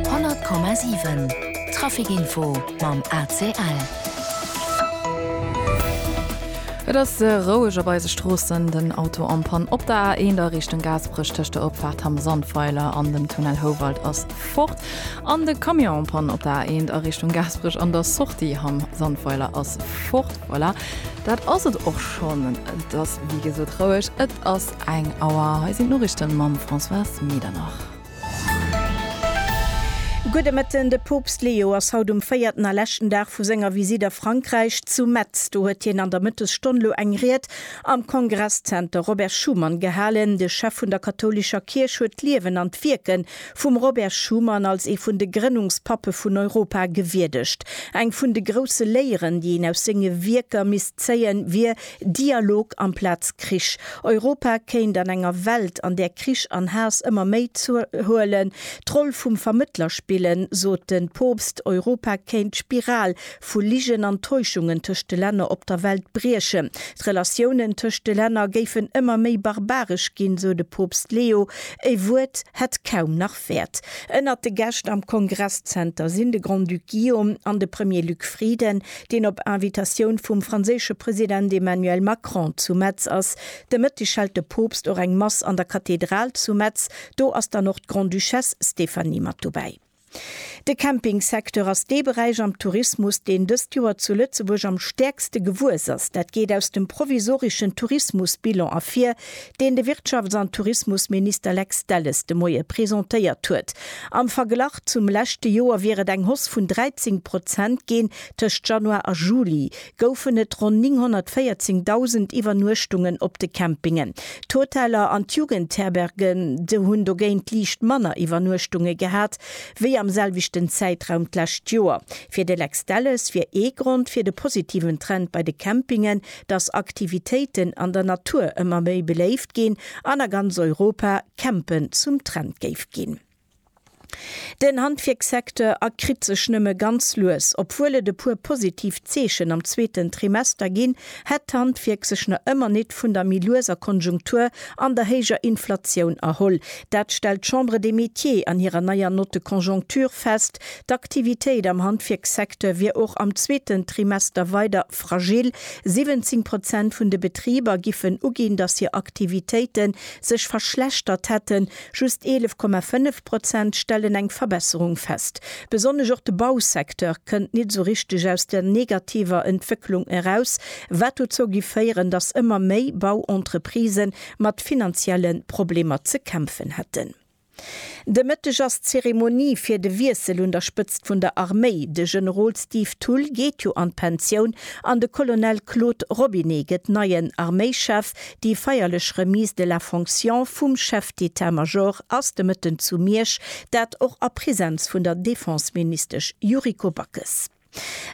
100,7 Trafic Info mam ACL. Et ass roueg op eise Stroossen. Den Auto am Pann op der A1 a Richtung Gaasperech tëscht der Opfaart Hamm Sandweiler an dem Tunnel Houwald ass fort. An de Camion am Pann op der A1 a Richtung Gaasperech an der Sortie Hamm Sandweiler ass fort. Voilà. Dat ass et och schonn. Et ass wéi gesot roueg, et ass eng Auer. Hei sinn d'Noriichten mam Françoise Medernach. Gudde Mëtten. De Poopst Leo ass haut um véierten a leschten Dag vu senger Visitt a Frankräich zu Metz. Do huet hien an der Mëttesstonn elo eng Ried am Kongresszenter Robert Schuman gehalen. De Chef vun der kathoulescher Kierch huet d'Liewen an d'Wierke Vum Robert Schuman als ee vun de Grënnungspappe vun Europa gewierdegt. Eng vun de grousse Léieren, déi een aus senge Wierker misst zéien, wier Dialog amplaz Krich. Europa kéint an enger Welt, an där Krich an Haass ëmmer méi zouhuelen, d'Roll vum Vermëttler spillen, sot de Poopst. Europa kéint d'Spiral vu Ligen an Täuschungen tëscht de Länner op der Welt briechen. D'Relatiounen tëscht de Länner géifen ëmmer méi barbaresch ginn, sou de Poopst Leo. E Wuert hätt kaum nach Wäert. Ënnert de Gäscht am Kongresszenter sinn de Grand-Duc Guillaume an de Premier Luc Frieden, deen op Invitatioun vum franséische President Emmanuel Macron zu Metz ass. De Mëtteg hält de Poopst och eng Mass an der Kathedral zu Metz. Do ass dann och d'Grande-Duchesse Stéphanie mat dobäi. De Campingsecteur ass dee Beräich am Tourismus, deen dëst Joer zu Lëtzebuerg am stäerkste gewuess ass. Dat geet aus dem provisoreschen Tourismusbilan ervir, deen de Wirtschafts an Tourismusminister Lex Delles de Moie presentéiert huet. Am Verglach zum leschte Joer wier et eng Hoss vun 13 Prozent ginn tëscht Januar a Juli. goufen et ronn 914.000 Iwwernuechtungen op de Campingen. D'Hoteller an d'Jugendherberge hunn dogéint liicht manner Iwwernuechtunge gehat, wéi am selwechten Zäitraum d'lescht Joer. Fir de Lex Delles wier ee Grond fir de positiven Trend bei de Campingen, datt Aktivitéiten an der Natur ëmmer méi beléift ginn an a ganz Europa Campen zum Trend géif ginn. Den Handwierkssecteur erkritt sech nëmme ganz lues. Obwuel et e puer positiv Zeechen am zweeten Trimester ginn, hätt d'Handwierk sech nach ëmmer nit vun der méi lueser Konjunktur an der héijer Inflatioun erholl. Dat stellt d'Chambre des Métiers an hirer neier Note de conjoncture fest. D'Aktivitéit am Handwierkssecteur wier och am zweeten Trimester weider fragil. 17 Prozent vun de Betriber giffen uginn, dass hir Aktivitéite sech verschlechtert hätten. Just 11,5 Prozent stellen eng Verbesserung fest. Besonnesch och de Bausecteur kënnt nit esou richteg aus der negativer Entwécklung eraus, wat dozou gi féieren, datt ëmmer méi Bauentreprise mat finanzielle Problemer ze kämpfen hätten. De Mëtteg ass d'Zeremonie fir de Wiessel un der Spëtzt vun der Arméi. De Generol Steve Thull geet jo an d'Pensioun an de Colonel Claude Robinet gëtt neien Arméischef, Déi feierlech Remise de la fonction vum Chef d'État Major ass de Mëtten zu Miersch, dat och a Präsenz vun der Defenseministesch Yuriko Backes.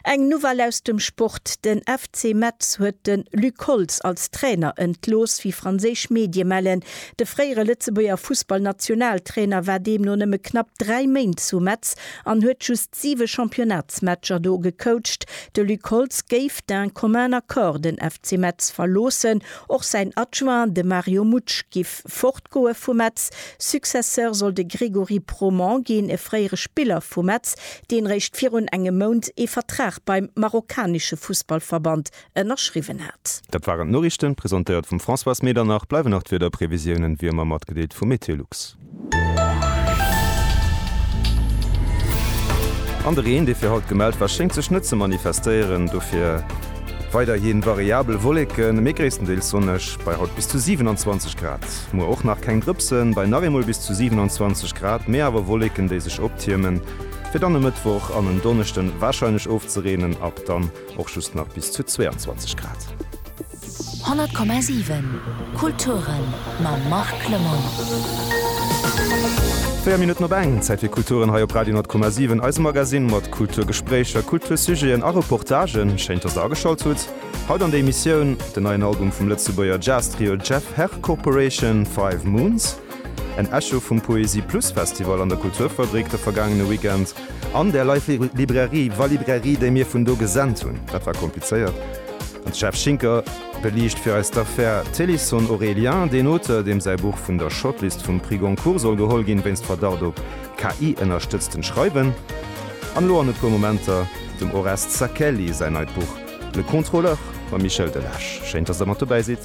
Eng Nouvelle aus dem Sport, Den FC Metz huet de Luc Holtz als Trainer entlooss. Wéi franséisch Medie mellen, de fréiere Lëtzebuerger Fussballnationaltrainer war deemno nëmme knapp 3 Méint zu Metz an huet just siwe Championnatsmatcher do gecoacht. De Luc Holtz géif d'un commun accord den FC Metz verloossen. Och säin Adjoint, de Mario Mutsch, giff fortgoe vu Metz. Successeur soll de Grégory Proman ginn, e fréiere Spiller vu Metz, deen réischt virun engem Mount ee Vertrag beim marokkanesche Fussballverband ënnerschriwwen hat. Dat waren d'Noriichten, presentéiert vum Françoise Medernach. Bleiwen nach d'Wiederprevisiounen, wéi ëmmer matgedeelt vu MeteoLux. An de Reen, dee fir haut gemellt war, schéngt sech net ze manifestéieren. Dofir weiderhi variabel Wolleken, mee gréisstendeels sonneg bei haut bis zu 27 Grad. Muer och nach keng Drëpsen, bei nach eemol bis zu 27 Grad, mee awer Wolleken, déi sech optiermen, fir dann e Mëttwoch an en Donneschde warscheinlech ofzereenen ab dann. och just nach bis zu 22 Grad. 100,7 Kulturen mam Marc Lemonnier. 4 Minutten op eng, Zäit fir Kulturen hei op Radio 10,7, eise Magasinn mat Kulturgespréicher, Kultursujeten a Reportagen. Schéint, dass Der ageschalt hutt. Haut an der Emissioun den neien Album vum Lëtzebuerger Jazz-Trio Jeff Herr Corporation, Five Moons, en Echo vum Poesie Plus Festival an der Kulturfabrik de vergaangene Weekend, An der Life Librairie, wa Librairie, déi mir vun do gesent hunn, dat war komplizéiert, an d'Steph Schinker beliicht fir eis d'Affär Téléson Aurélien, deen Auteur, deem säi Buch vun der Shortlist vum Prix Goncourt soll geholl ginn, wéinst Verdacht op KI-ënnerstëtztent Schreiwen. An elo an e puer Momenter dem Oreste Sacchelli säin neit Buch Le Contrôleur mam Michel Delage. Schéin, dass der mat dobäi sidd.